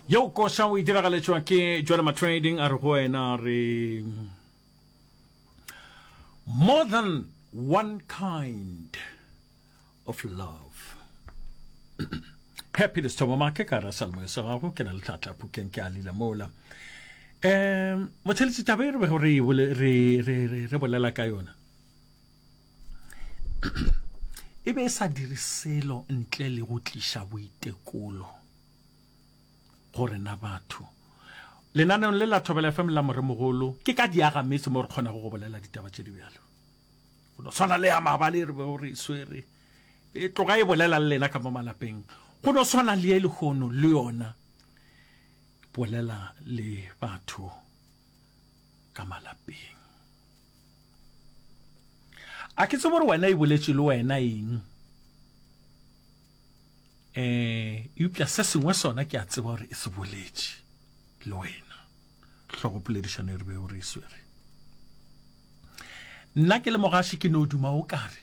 yo koša o itiragaletšwa ke jwale matrading a re go wena re more than one kind of love happy le sethomo make ka ra salmo sa gago ke na le tlatla pukeng ke a lila mola um motheletsi taba e re bego re e bole- re- re- re- re bolela ka yona e be e sa dire selo ntle le go tliša boitekolo go rena batho lenaneong le la thobela fm la moremogolo ke ka diaga metse mo re kgonago go bolela ditaba tše di bjalo go no swana le ya mabale re bego re e swere e tloga e bolela le lena ka mo malapeng go no swana le ye lehono le yona bolela le batho ka malapeng a ke tsebo gore wena e boletše le wena eng eh eupša se sengwe sona ke a tseba gore e se boletše le wena hlogopoledišano e re be o re e swere nna ke le mogaši ke no duma o kare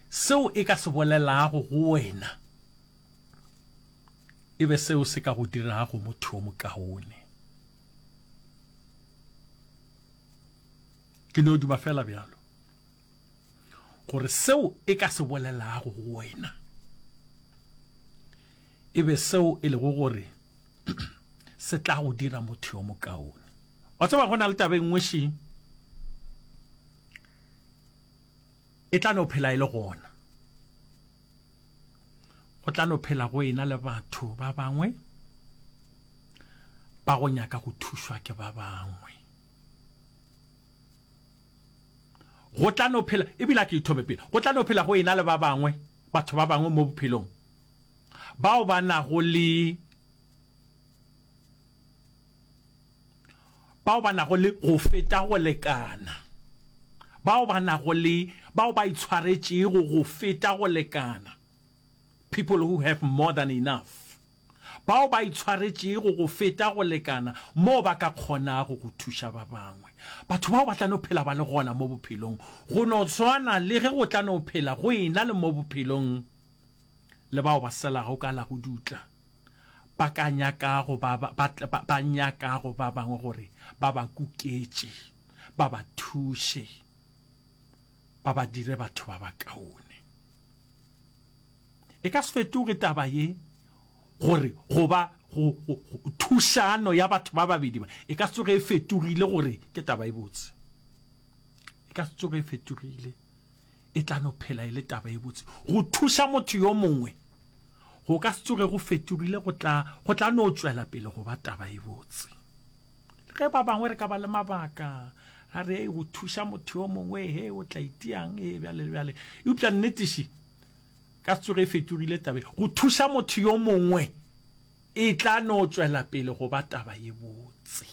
seo e ka se bolelago go wena e be seo se ka go dirago motho o mokaone ke no duma fela bjalo gore seo e ka se bolelago go wena e be seo e lego gore se tla go dira motho yo mokaone wa tseba go na le tabeng nngwe shi e tla no phela e le gona go tla no phela go ena le batho ba bangwe ba go nyaka go thušwa ke ba bangwe go tla no phela ebile a ke ithome pele go tla no phela go ena le ba bangwe batho ba bangwe mo bophelong bao ba nago le bao ba nago le go feta go lekana, bao ba nago le bao ba itshwaretšego go feta go lekana, people who have more than enough, bao ba itshwaretšego go feta go lekana moo ba ka kgonago go thuša ba bangwe. Batho bao ba tla no phela ba le gona mo bophelong, go no swana le ge go tla no phela go ena le mo bophelong le bao ba selago ka la go dutla. ba ka nyaka go ba ba, ba, tla- ba, ba nyaka go ba bangwe gore ba ba kuketše, ba ba thuše, ba ba dire batho ba bakaone. E ka se fetoge taba ye gore go ba go, go, go thušano ya batho ba babedi ba e ka se tsoge e fetogile gore ke taba e botse. E ka se tsoge e fetogile. e tla no phela e le taba e botse. Go thuša motho yo mongwe go ka se tsoge go fetogile, go tla go tla no tšwela pele go ba taba e botse. Le ge ba bangwe re ka ba le mabaka ra re go thuša motho yo mongwe he o tla itiang e bjale le bjale, eupša nnetiši ka se tsoge e fetogile taba e. Go thuša motho yo mongwe e tla no tšwela pele go ba taba e botse.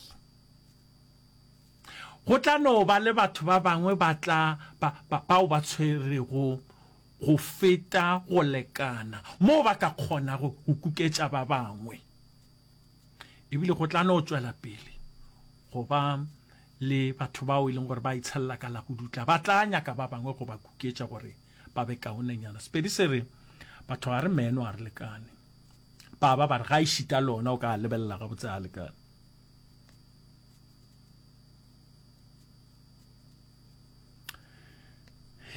Go tla no ba le batho ba bangwe ba tla, ba, ba, bao ba tshwerego go feta go lekana moo ba ka kgonago go kuketša ba bangwe. Ebile go tla no tšwela pele go ba le batho bao e leng gore ba itshelela ka la go dutla, ba tla nyaka ba bangwe go ba kuketša gore ba be kaonenyana. Sepedi se re, Batho ga re meno, ga re lekane. Baba ba re, Ga e šita lona, o ka a lebelela gabotse, ga a lekane.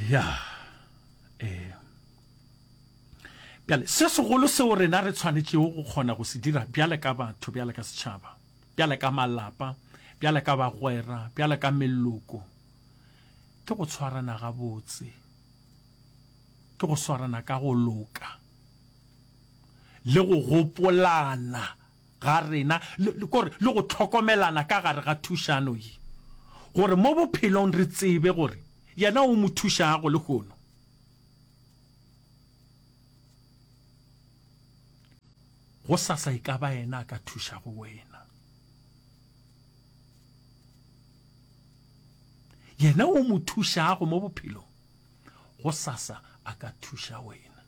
ya eh bjale se segolo seo rena re tshwanetšego go kgona go se dira bjale ka batho bjale ka setšhaba bjale ka malapa bjale ka bagwera bjale ka meloko ke go tshwarana gabotse ke go swarana ka go loka le go gopolana ga rena le, le, kore, le go hlokomelana ka gare ga thušano ye, gore mo bophelong re tsebe gore Yena o mo thušago lehono. Gosasa e ka ba Yena a ka thušago wena. Yena o mo thušago mo bophelong, gosasa a ka thuša wena.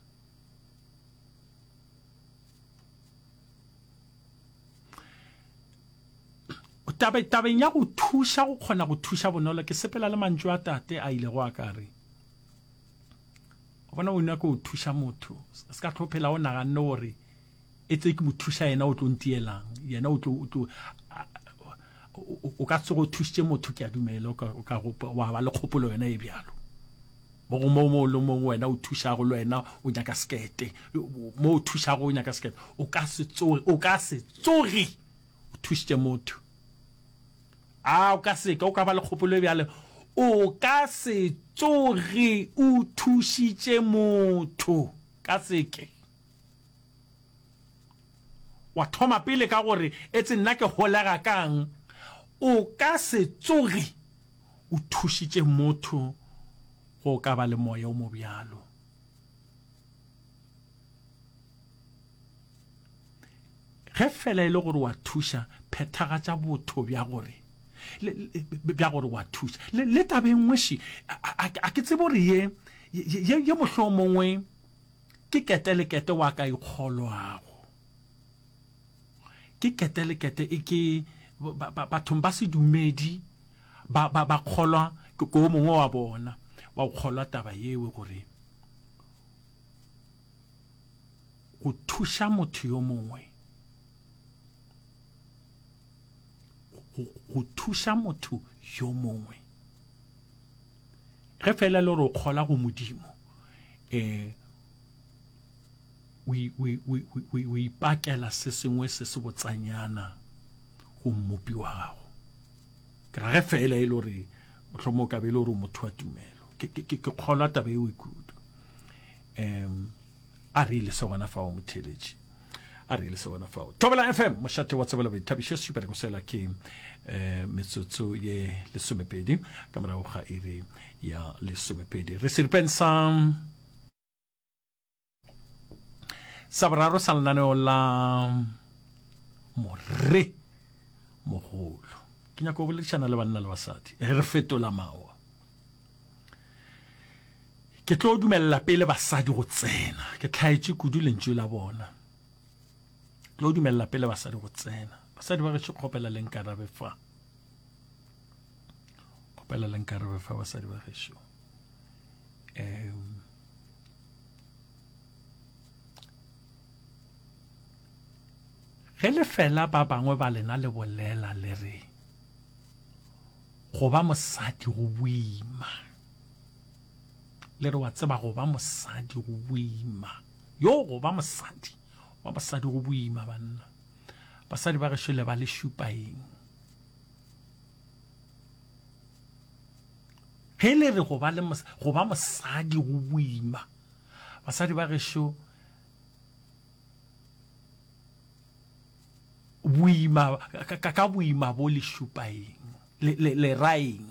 tabe tabeng ya go thuša go kgona go thuša bonolo ke sepela le mantšu a tate a ile go a ka re bona o nyaka go thuša motho se ka tlhophela o naganne gore e tse ke mothusa yena o tlo ntielang yena o tlo o tlo o ka tsogo thusitse motho ke a dumela o ka wa ba le kgopolo yona e bjalo mo go mo mo le mongwe wena o thušago le wena o nyaka sekete mo o thušago o nyaka sekete o ka se tsoge o ka se tsoge o thušitše motho a o ka seka o ka ba le kgopolo e bjale o ka se tsoge o thušitše motho ka seke Wa thoma pele ka gore, Etse nna ke holega kang? O ka se tsoge o thušitše motho go ka ba le moya o mobjalo. Ge fela e le gore wa thuša, phethagatša botho bja gore bja gore wa thuša le tabeng ngweši a ke tsebe gore ye ye mohlomongwe Ke ketelekete wa ka ikgolwago. Ke ketelekete e ke bathong ba sedumedi ba ba ba kgolwa ke ko mongwe wa bona wa go kgolwa taba yewe gore go thuša motho yo mongwe go thuša motho yo mongwe ge fela le go kgola go modimo um o ipakela se sengwe se se botsanyana go mmopi wa gago ke rage fela e le gore motlhomo o kabe e le gore motho wa tumelo ke kgolwa taba eo e kudu um a re ile se gona fao motheletši a re ile se gona fao thobela fm mošate wa tsebela boithabišo sebereko sela ke um metsotso ye lesomepedi ka morago ga iri ya lesomepedi re seripeng sa sa boraro sa lenaneo la morre mogolo ke nyako go boledišana le banna le basadi re fetola mawa Ke tlo dumelela pele basadi go tsena. Ke tlhaetše kudu lentšu la bona. Tlo dumelela pele basadi go tsena. Basadi ba gešo kgopela le nkarabe fa. Kgopela le nkarabe fa basadi ba gešo. Um, ge le fela ba bangwe ba lena le bolela le re Go ba mosadi go boima. Le re wa tseba go ba mosadi go boima. Yo go ba mosadi. Go ba mosadi go boima banna. Basadi ba gešo le ba le šupa eng? Ge le re go ba le go ba mosadi go boima. Basadi ba gešo boima ka, ka boima bo le šupa eng le, le, le ra eng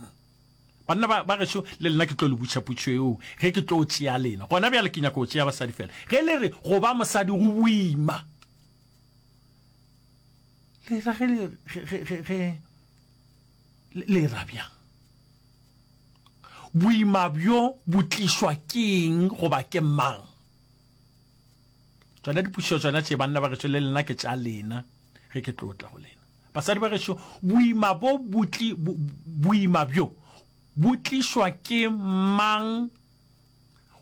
banna ba, ba gešo le lena ke tlo le butšha putšo eo ge ke tlo tšea lena gona bjale ke nyaka go tšea basadi fela ge le re go ba mosadi go boima le ra ge le, ge, ge, ge, ge le ra bjang boima bjo bo tlišwa keng goba ke mang tsona dipušo tsona tše banna ba gešo le lena ke tša lena ge ke tlo tla go lena basadi ba gešo boima bo butli boima bjo bo tlišwa ke mang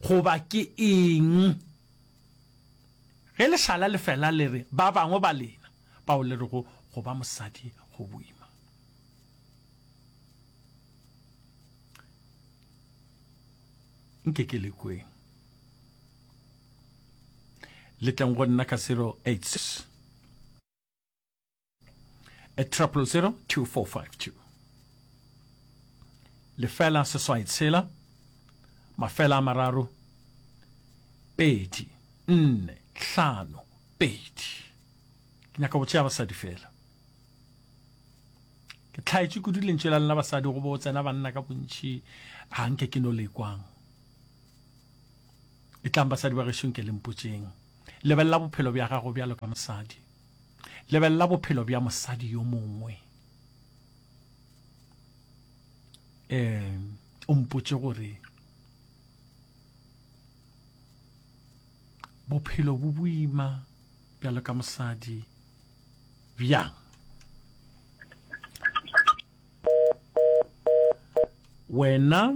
goba ke eng ge leshala le fela le re ba bangwe ba lena bao le re go go ba mosadi go boima nke ke le kweng le tleng go nna ka 086 a triple zero two four five two lefela seswai tshela mafela a mararo pedi nne tlhano pedi ke nyaka go tšea basadi fela ke tlhaetše kudu lentše la lena basadi go bo tsena banna ka bontši ga nke ke no le kwang e tlang basadi ba gešong ke le mpotšeng lebelela bophelo bja gago bjalo ka mosadi lebelela bophelo bja mosadi yo mongwe um o mpotše gore bophelo bo boima bjalo ka mosadi bjang wena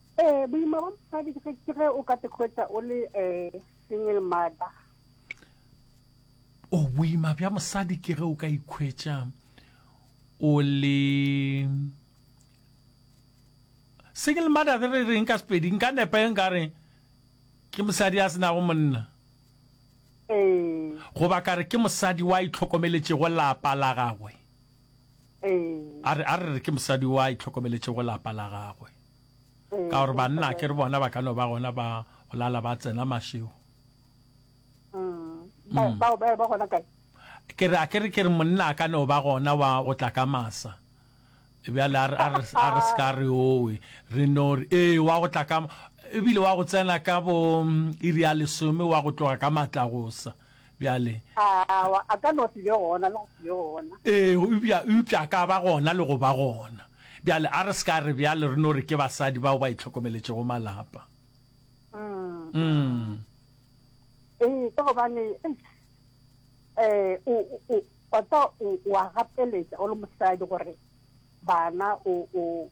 Eh, boima ba mosadi ke ke ge o ka te hwetša o le eh, single mother o boima bja mosadi ke ge o ka ikhwetša o le single mother re re reng ka sepedi nka nepa e nka re ke mosadi a senago monna eh, goba ka re ke mosadi wa itlhokomeletšego lapa la gagwe A re, a re re ke mosadi yo a itlhokomeletšego lapa la gagwe, ka gore banna a ke re bona ba ka no ba gona ba go lala ba tsena mašego. Bao ba ba gona kae? Ke re, a ke re ke re monna a ka no ba gona wa go tla ka masa. Bjale a re, a re, a re se ka re owe, re no re, ee, wa go tla ka, ebile wa go tsena ka bo iri ya lesome wa go tloga ka matlagosa. bjale Awa, a ka no se be gona le go se be gona. ee eupša eupša a ka ba gona le go ba gona bjale a re se ka re bjale re no re ke basadi bao ba itlhokomeletšego malapa Mm. mm. Ee, ka gobane eish, eh, o o- o wa tsa o wa gapeletša o le mosadi gore bana o o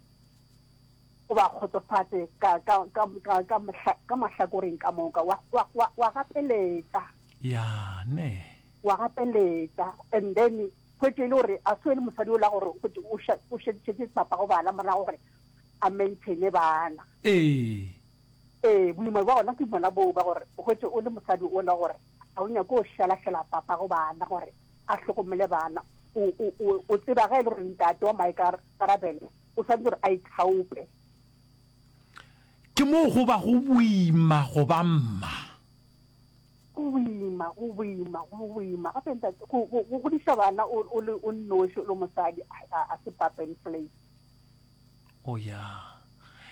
o ba kgotsofatše ka, ka, ka, ka, ka, mohla, ka mahlakoreng ka moka. Wa, wa, wa, wa gapeletša. Ya, nne. Wa gapeletša, and then, hwetše e le gore, a se e le mosadi o la gore, hwetše o ša, o šetše papago bana morago gore a maintaine bana. Ee. Ee, boima bja gona ke bona boo ba gore, hwetše o le mosadi o la gore, a o nyake go šalašala papago bana gore a hlokomele bana. O, o, o, o tseba ge e le gore ntate wa maikarabelo, o swanetse gore a ithaope. Ke moo go ba go boima go ba mma. Go boima, go boima, go boima. Gape ntate, go godiša bana o le o nnoši o le mosadi a se papa and play. O oh, ya.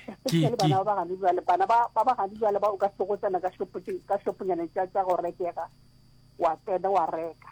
Especially bana ba bagane jwale, bana ba bagane jwale ba o ka sego tsena ka shoponyana tša go rekega, wa tsena wa reka.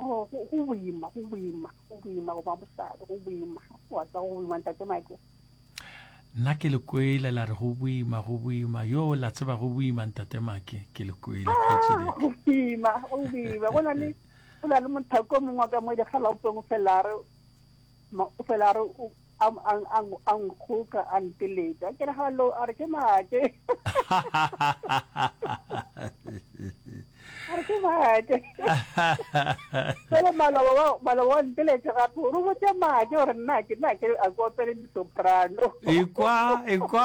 Oh, go go boima go boima go boima go ba mosadi go boima wa tsa go boima ntate make nna ke le kwele la re go boima go boima yo la tseba go boima ntate make ke le kwele kgaitsedi Ah, go boima go boima go na le go na le mothako o mongwe wa ka mo dikgalaopeng o fela a re Ma, o fela a re o- a m- a n- a n- a nkgoka a nteletša ke re hallo a re ke maake a re ke maake fele maloba wa- maloba wa nteletša gape o re o botse maake gore nna ke nna ke a ko opele disoprano ekwa ekwa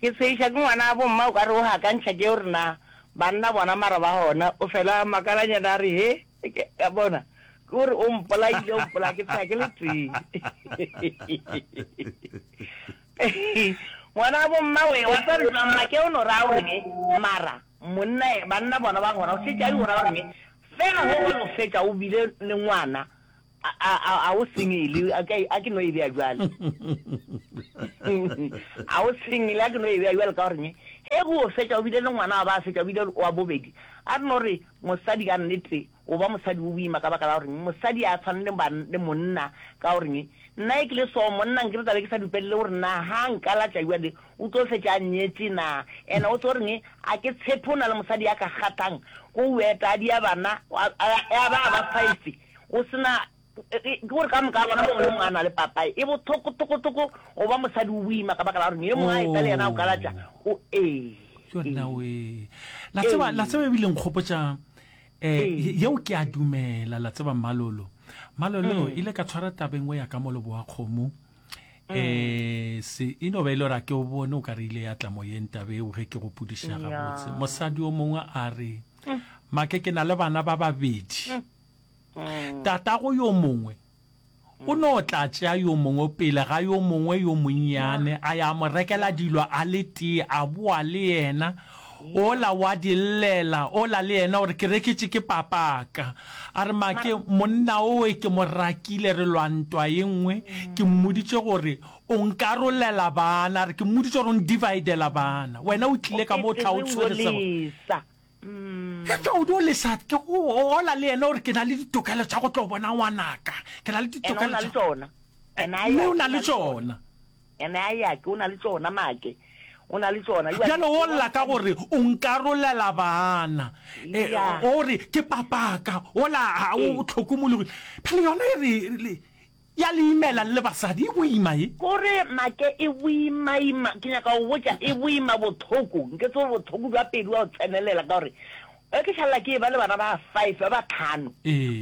Ke tshegiša ke ngwana gabo mma o ka re o gakantšha ke gore na banna bona mara ba gona o fela a makalanyana a re he ka bona ke gore o mpolaile o mpolaya ke tsheya ke le tee ngwana gabo mma we wa tsa rutla mma ke o no raya gore ke mara monna banna bona ba gona o šetše a di gona gore ke fela go go no fetša o bile le ngwana A, a, a, a o singile? A ke, a ke no e bea bjale. a o singile? A ke no e bea bjale ka gore ne, ge go o fetša o bile le ngwana wa ba a fetša o bile wa bobedi, a re no re mosadi ka nnete o ba mosadi o boima ka baka la gore mosadi a tshwane le ban, le monna ka gore ne, nna ge ke le so monna nkere tla be ke sa dupelele gore na ha nkalatša bjale o tlo fetša a nnyetše na. Ena o tso re ne, a ke tshepe o na le mosadi ya ka kgathang ko o etadia bana, a, a, a ba a ba five. Go se na, ke gore ka moka bona mongwe le mongwe a na le papaye. E bothoko-thoko-thoko go ba mosadi o boima ka baka la gore ne e mongwe a eta le yena o kalatša. O ee. Yona we. La tseba, la tseba e bile nkgopotša, eh, yeo ke a dumela, la tseba Mmalolo. Mmalolo, ile ka tshwara taba engwe ya ka mo Leboakgomo, eh, se, e no ba e le gore a ke o bone o ka re ile ya tla moyeng taba eo ge ke gopodiša gabotse. Mosadi o mongwe a re, Make ke na le bana ba babedi. Tatago yo mongwe o no tla tšea yo mongwe pele ga yo mongwe yo monnyane, a ya mo rekela dilo a le tee, a boa le yena, ola wa di llela, ola le yena o re, Ke reketše ke papaka. A re, Make, monna owe ke mo rakile, re lwa ntwa ye nngwe, ke mmoditše gore o nkarolela bana, a re, ke mmoditše gore o ndivaidela bana, wena o tlile ka mo o tla o tshwere sebaka. Ge Todi o lesa, ke go bolela le yena gore ke na le ditokelo tša go tlo bona ngwanaka. Ke na le ditokelo tša tšona. Mme o na le tšona. Ene a ya ke o na le tšona make. O na le tšona. Bjale o lla ka gore o nkarolela bana. O re ke papaka. O la o tlhokomologile. Bjale yona e re Ya le imela le le basadi e boima ye. Kore make e boimaima, ke nyaka go botša e boima bothoko, nketse gore bothoko bja pelo bja go tsenelela ka gore ge ke šalela ke eba le bana ba five ba ba tlhano,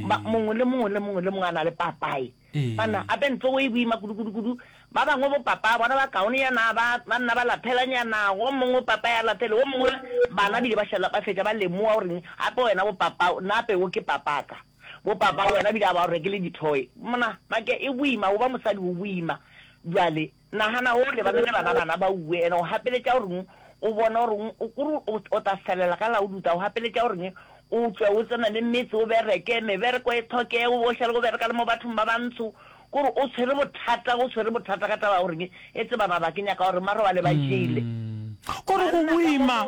ba mongwe le mongwe le mongwe le mongwe a na le papaye. Banna gape ntlogo e boima kudu kudu kudu, ba bangwe bo papaya bona ba kaonenyana ba ba nna ba laphelanyana, wo mongwe papaye a laphele wo mongwe, bana bile ba šala ba fetša ba lemoga gore gape wena bo papao, nna ape wo ke papaka. Bo papa wena bile a ba o rekele di toy mna make e boima goba mosadi o boima jwale nagana o lebane le bana bana ba uwe ene o gapeletša goreng o bone goreng o kore o ta felela ka la o duta o gapeletša goreng o tswe o tsena le metse o bereke mebereko e tlhoke o bo šale go bereka le mo bathong ba bantsho kore o tshwere bothata o tshwere bothata ka taba goreng e tse bana ba ke nyaka gore mara wa le ba jele gore go boima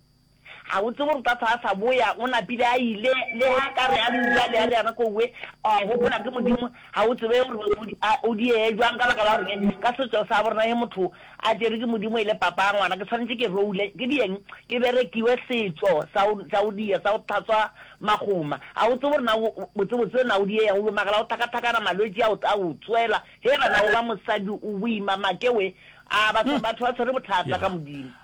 Gabotse gore Tata a sa boya, o napile a ile, le ge a ka re a le uwe a le a le yana ko uwe, a gopola ke Modimo. Ga o tsebe gore o, a, o diege jwang ka baka la gore ke, ka setšo sa borena ge motho a tšerwe ke Modimo e le papa a ngwana, ke swanetše ke roule, ke dieng, ke berekiwe setšo sa go, sa go diya, sa go hlatswa magoma. Ga o tsebe gore na o, botsebotse na o diega uwe, magala a go thakathakana, malwetši a o, a o tswela. Hee banna, o ba mosadi, o boima, make we. A, batho, batho ba tshwere bothata ka Modimo.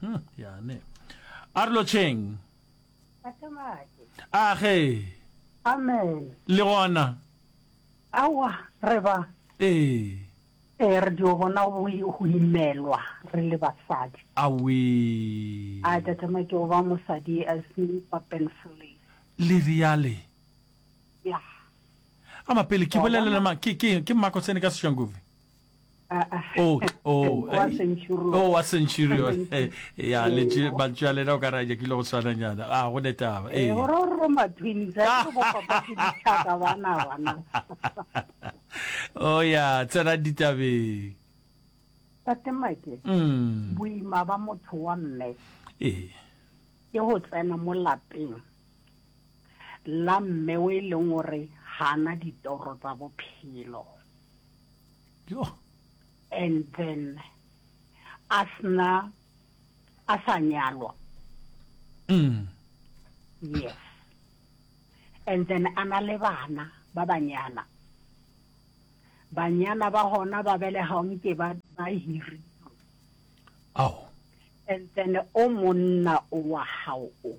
hmm, yane a re lotšheng age amen le gona awa re ba ee ee re dio bona go imelwa re le basadi awe a tatama ke go ba mosadi a se papenfle le riale ya ama pele ke bolelela ke ke ke mmako tsene ka seshangovi Oh, oh, wa eh, centurion. oh, wa centurion Eh, ya letše mantšu a lena o ka ra nyakile go swananyana a go ne taba Eh, ee. gore o roma twins a ke go papa ke dithaka bana bana o ya tsena ditabeng tate make Mm, boima ba motho wa mme ee ke go tsena mo lapeng la mme o e leng gore gana ditoro tsa bophelo and then a sna a sa nyalwa mm. yes and then a na le bana ba banyana banyana ba gona ba belega o nke ba ba hiri ao and then o monna o wa gago o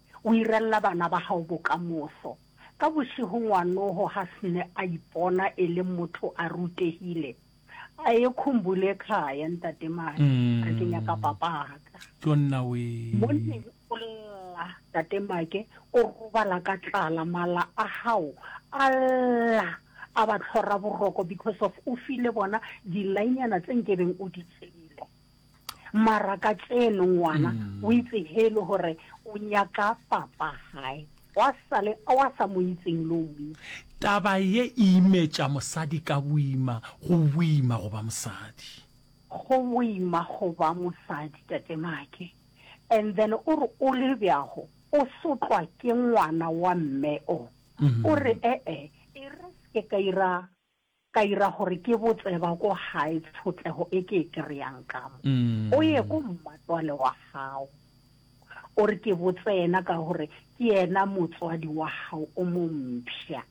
O irella bana ba gago bokamoso. Ka bošego ngwanogo ga sne a ipona e le motho a rutegile, a ye khumbule khaya, Ntate Madi, re ke nyaka papaka. Monneng o lla, Tate Make, o robala ka tlala, mala a gago a lla a ba tlhora boroko because of o file bona dilainyana tse nkebeng o di tseile. mara ka tseno ngwana mm. o itse helo gore o nyaka papa gae wa sale wa sa mo itseng lo mme taba ye e imetša mosadi ka boima go boima go ba mosadi go boima go ba mosadi tate make and then o re o le bjago o sotlwa ke ngwana wa mme o mm-hmm. o re ee e re se ka ira Ka ira gore ke bo tseba ko gae tšhotleho e ke e kry-ang ka mo. O ye ko mmatswale wa gago. O re ke bo tsena ka gore ke yena motswadi wa gago o mo mpsha.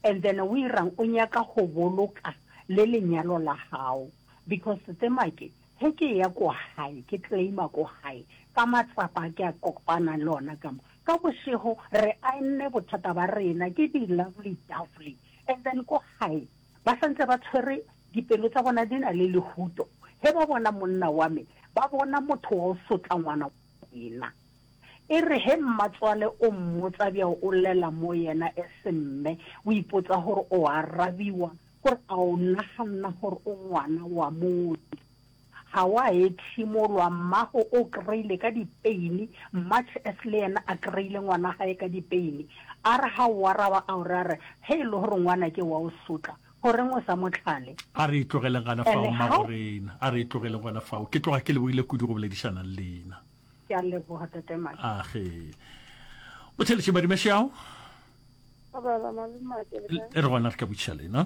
And then o irang o nyaka go boloka le lenyalo la gago because tse make he ke ya ko gae ke claim-a ko gae ka matsapa a ke a kopana le ona ka mo. Ka bošego re aenne bothata ba rena ke di lovely dovely And then ko gae ba sa ntse ba tshwere dipelo tsa bona di na le lehuto he ba bona monna wa me ba bona motho wa o sotla ngwana wa rena e re he mmatswale o mmotsa bjao o lela mo yena e se mme o ipotsa gore o arabiwa gore a o naganna gore o ngwana wa motho Ga wa ethimolwa, mmago o kry-ile ka dipeini, much as le yena a kry-ile ngwanagae ka dipeini. A re ga o araba a o re a re, ge e le gore ngwana ke wa o sotla, goreng o sa mo tlhale? A re e tlogeleng gana fao, mmago rena, a re e tlogeleng gona fao. Ke tloga ke lebohile kudu go boledišana le lena. Ke a leboga, Tate Madi. Age. Botheletše Madi Mashau. Re gona re ka botšiša lena.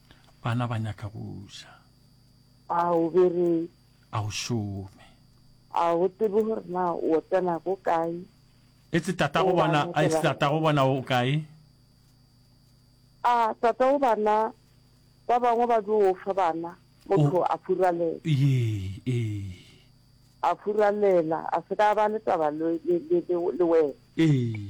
Bana ba nyaka go ja. A o bereke? A o šome? A o tsebe gore na o tsena go kae? E tse tata go bona, a e tse tata go bona o kae? A tata go bana ba bangwe ba dio o fa bana motho a furalela. Ye, e. A furalela, a se ka ba le taba le wena. E.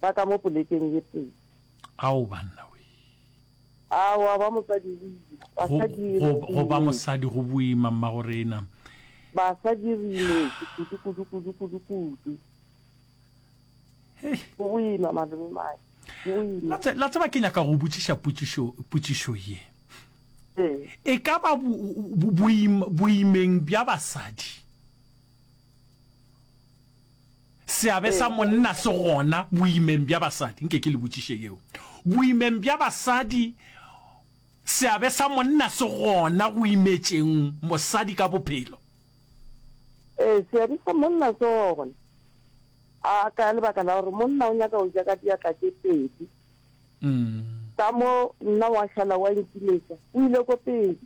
ba ka mo polekeng ye tee. Ao, banna we! Aowa, ba mosadi go boima. Basadi re imetswe. Go ba mosadi go boima, mmago rena. Basadi re imetswe kudu, kudu, kudu, kudu, kudu. Go boima, malome mae. La tseba ke nyaka go botšiša potšišo ye e ka ba boimeng bja basadi Seabe sa monna se gona boimeng bja basadi? Nke ke le botšiše yeo. Boimeng bja basadi, seabe sa monna se gona go imetšeng mosadi ka bophelo? Ee, seabe sa monna se gona. A ka lebaka la gore monna o nyaka go ja ka diatla tše pedi. Ka mo nna wa šala wa nkiletša, o ile ko pele.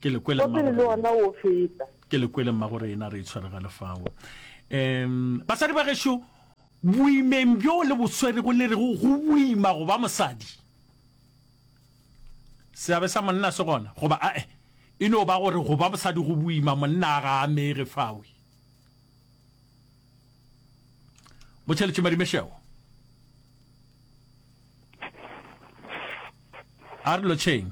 Ke le kwele mmago rena. Wa pele le ona o feta. Ke le kwele mmago rena re itshwere ga lefao. Em basadi ba gešo boimeng bjo le boswere go le re go go boima go ba mosadi. Seabe sa monna se gona goba a e e no ba gore go ba mosadi go boima monna a ga amege fawe. Motšheletše Madimešego. A re lotšheng.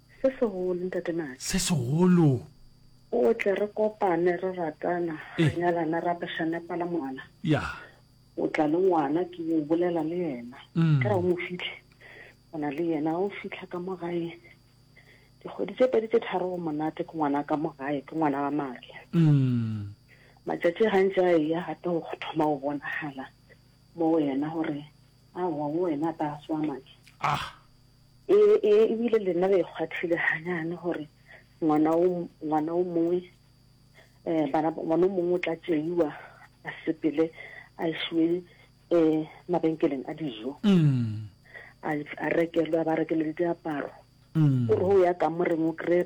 Se segolo, Ntate Madi. Se segolo. O tle re kopane, re ratana, re nyalane, re apešane pala ngwana. Ya. O tla le ngwana, ke o bolela le yena. Ka ra o mo fihle, o na le yena, o fitlha ka mo gae. Dikgwedi tše pedi tše tharo o monate, ke ngwana ka mo gae, ke ngwana wa madi. Matšatši gantši a eya gape o thoma o bonagala mo wena gore aowa, wo wena ba swa madi. Ah. E, e, ebile le nna le ikgwathile ganyane gore ngwana o ngwana o mongwe um bana ngwana o mongwe o tla tšeiwa a sepele a isiwe um mabenkeleng a dijo mm. a rekelwa ba rekelele diaparo mm. o re o ya kamoreng o kry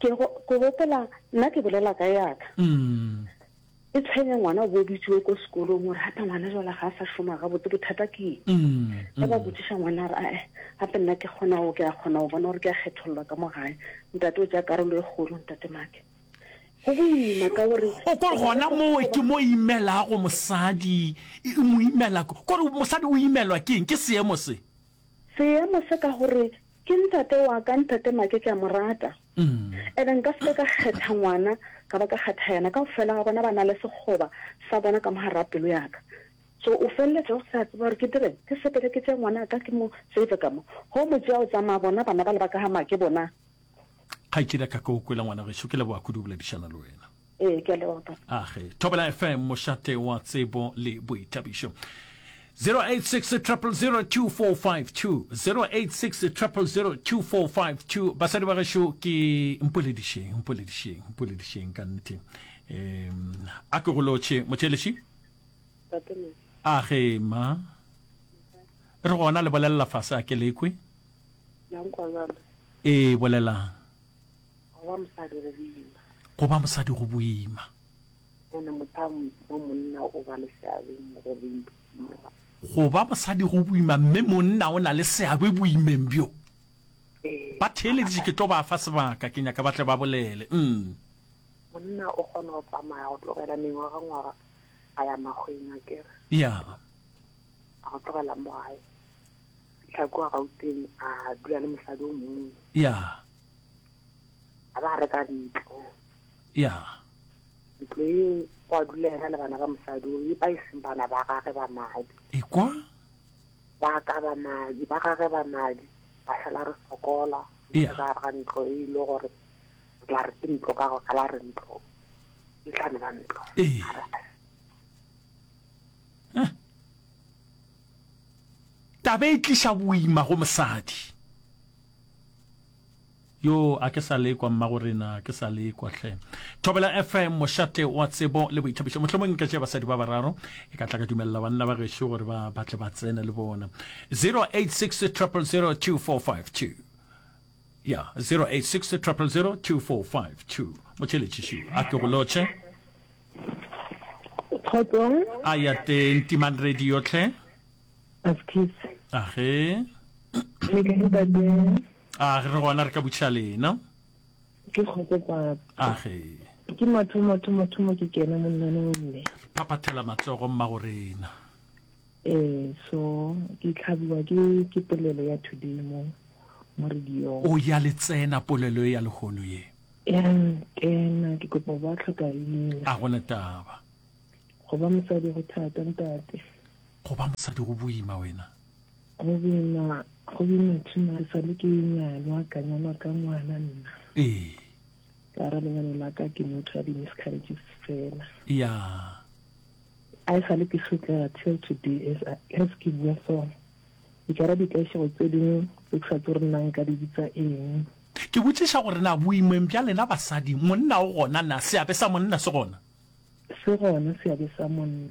Ke go, ke gopola, nna ke bolela ka yaka. E tshwenya ngwana o bobitšiwe ko sekolong gore gape ngwana jala ga a sa šoma ga botse bothata ke eng ga ba botsiša ngwana a re ae gape nna ke kgona o ke a kgona go bona gore ke a kgethololwa ka mo gae ntate o ja karolo e kgolo ntate make go boima ka gore o kore gona moo ke mo imelago mosadi e, e mo imela kore mosadi o imelwa ke eng ke seemo se seemo se ka gore Ke ntate wa ka, ntate Make ke a mo rata. Ene nka se ke ka kgetha ngwana ka ba ka kgetha yena. Kaofela ga bona ba na le sekgoba sa bona ka mo gar'a pelo ya ka. So o feleletša o sa tseba gore ke direng, ke sepele ke tšee ngwana ka ke mo save ka mo. Ge o mo tšea o tsamaya, bona bana bale ba ka ga Make bona. Kgaetšedi ya ka, ke go kwele ngwana geso. Ke leboga kudu go boledišana le wena. Ee, ke a leboga papa. Age, Thobela FM, mošate wa tsebo le boithabišo. 086 000 2452 086 000 2452 basadi ba gešo ke mpoledišeng mpoledišeng mpoledišeng ka nnete um a ke go lotšhe motšheleši a ge ma re gona le bolelela fase a ke lekwe ee bolelang Go ba mosadi go boima. Go ba mosadi go boima. Go na motho wa monna o ba le seabe mo go boima. Go ba mosadi go boima mme monna o na le seabe boimeng bjo. Ee. Ba theeleditše ke tlo ba fa sebaka ke nyaka ba tle ba bolele. Mm. Monna o kgona go tsamaya go tlogela mengwaga ngwaga a ya magweng a kere. Ya. A go tlogela mo gae. Tlhako a gauteng a dula le mosadi o mongwe. Ya. a ba reka ntlo ya ntlo e kwa dula ena le bana ba mosadi o e ba e seng bana ba gage ba madi ekwa ba ka ba madi ba gage ba madi ba sala re sokola Yeah. ka ga ntlo e ile gore re tla re ke ntlo ka go ka la re ntlo e tla nna ntlo Ee. A re, taba e tliša boima go mosadi Yoo, a ke sa lekwa, Mmagorena, ke sa lekwa hle. Thobela FM, mošate wa tsebo le boithabišo. Mohlomong nka tšea basadi ba bararo, e ka tla ka dumelela banna ba gešo gore ba batle ba tsene le bona. 086 000 2452 ya 0860002452 motšheletšiši a ke go lotšhe a ya teng timang radio tlhe As kids. Age. Le ka ntate. A re re gona re ka butšha lena. Ke kgotse papa. Age. Ke motho motho motho mo ke kena monnane o mme. Phapathela matsogo mma go rena. Eh so ke tlhabiwa ke ke polelo ya thudimo mo radio. O ya le tsena polelo ya lehono ye. Ya kena ke kopa ba tlhoka leina. A gona taba. Go ba mosadi go thata ntate. Go ba mosadi go boima wena. Go boima go boima tuna re sale ke nyalwa ka nyalwa ka ngwana nna. Ee. Ka ra lenyalo la ka ke motho ya di miscarriages fela. Yeah. I sa le ke sotlega till today as as ke bua so e ka ra dikaešego tse dingwe tse ke sa tse gore nang ka di bitsa eng ke botšiša gore na boimeng bja lena basadi monna o gona na seabe sa monna se gona Se gona seabe sa monna.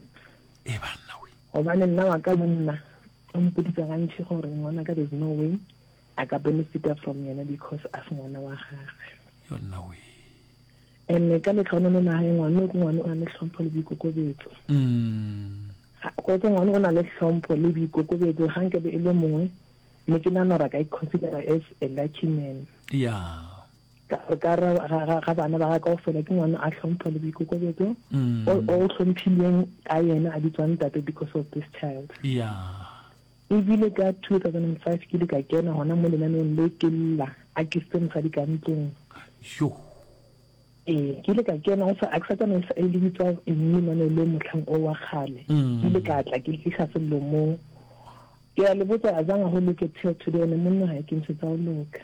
E banna we. Gobane nna wa ka monna o mpoditsa gantši gore ngwana ka there's no way a ka benefita from yena because a se ngwana wa gagwe. Yonna we. And ka letlha one le nageng ngwana o ke ngwana o na le tlhompho le boikokobetso. Mm. Go ke ngwana o na le tlhompho le boikokobetso ga nke be e le mongwe mme ke nagana gore a ka iconsidera as a lucky man. Yeah. ka re ga bana ba ga kao fela ke ngwana a tlhompho le boikokobetso mm. o tlhomphilweng ka yena a bitswang tate because of this child ebile ka 2005 ke le ka kena gona mo lenaneng le ke lla a ke se mosadi ka ntlong ee ke ile ka kena go sa a ke sa tsana e le bitsa mme mane le motlhang o wa kgale mm. ke ile ka tla ke fitlha sello mo ke a le botsa a zanga go look at here today ne monna ga ke ntshetsa go loka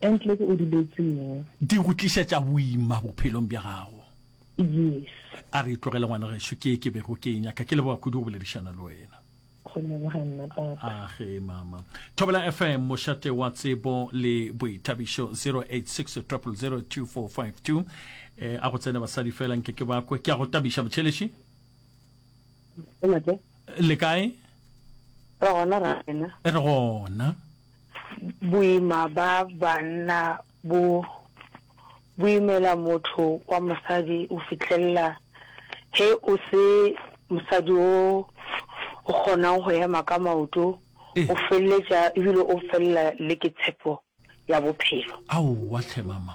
Entlek o duletše mo. Di go tlišetša boima bophelong bja gago. Yes. A re tlogele ngwana gešo, ke ye ke bego ke e nyaka. Ke leboga kudu go boledišana le wena. Go leboga nna papa. A ge mama. Thobela FM, mošate wa tsebo le boithabišo 086 000 2452. Eh, a go tsene basadi fela nke ke bakwe. Ke a go tabiša motšheleši. le kae re gona ra rena re gona boima ba banna bo boimela motho wa mosadi o fitlhelela he o se mosadi o o kgonang go ema ka maoto o feleletša ebile o felela le ke tshepo ya bophelo aowa tlhe mama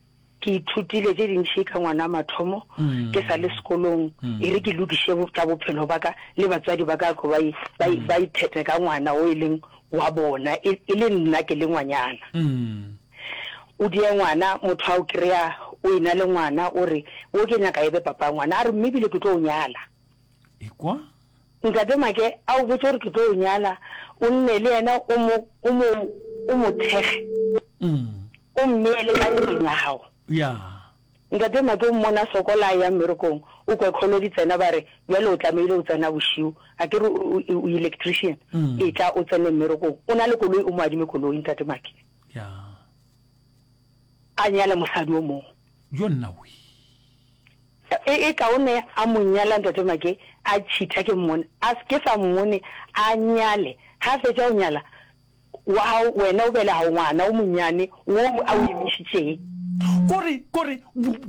Ke ithutile tše dintši ka ngwana mathomo ke sa le sekolong e re ke lokiše tša bophelo ba ka le batswadi ba ka tlo ba ithete ka ngwana o e leng wa bona e le nna ke le ngwanyana. O die ngwana motho a o kry-a o e na le ngwana o re wo ke nyaka e be papa ngwana a re mme ebile ke tlo o nyala. ekwa Ntate Make a o botše gore ke tlo o nyala, o nne le yena, o mo, o mo, o mo thekge, mm. o mmeele ka ntlong ya gago. Ya. Ntate Make o mmona sokola a ya mmerekong, o kwe kholo di tsena ba re, Bjale o tlamehile o tsena bošiu, a ke re o, o, o electrician, Mm. e tla o tsene mmerekong. O na le koloi, o mo adime koloi, Ntate Make. Ya. A nyale mosadi o mongwe. Yo nna we. E, e kaone a mo nyala Ntate Make, a tšhitha ke mmone, a se ke sa mmone, a nyale. Ge a fetša go nyala, wa gago wena o bela gago ngwana wo monyane wo a o emišitšeng. Kore, kore,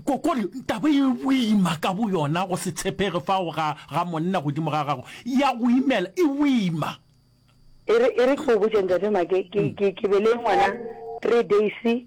ko, kore taba e boima ka boyona, go se tshepege fao ga, ga monna godimo ga gago, ya go imela, e boima. E re, e re ke go botše Ntate Make, ke, ke, ke bele ngwana three days.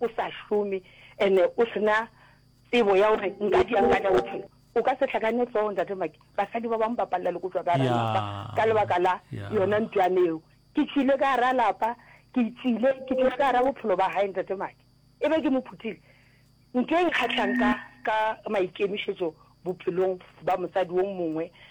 o sa šome and o sena tsebo ya gore nka di yang ka tša bophelo o ka se hlakane hloogo ntate maki basadi ba bangwe ba palela le ko tswa ka gara lapa ka lebaka la yona ntwane eo ke tšwile ka gara lapa ke tswile ke tswile ka gara bophelo ba gae ntate maki e be ke mo phutile nke e nkgatlhang ka ka maikemišetso bophelong ba mosadi wo mongwe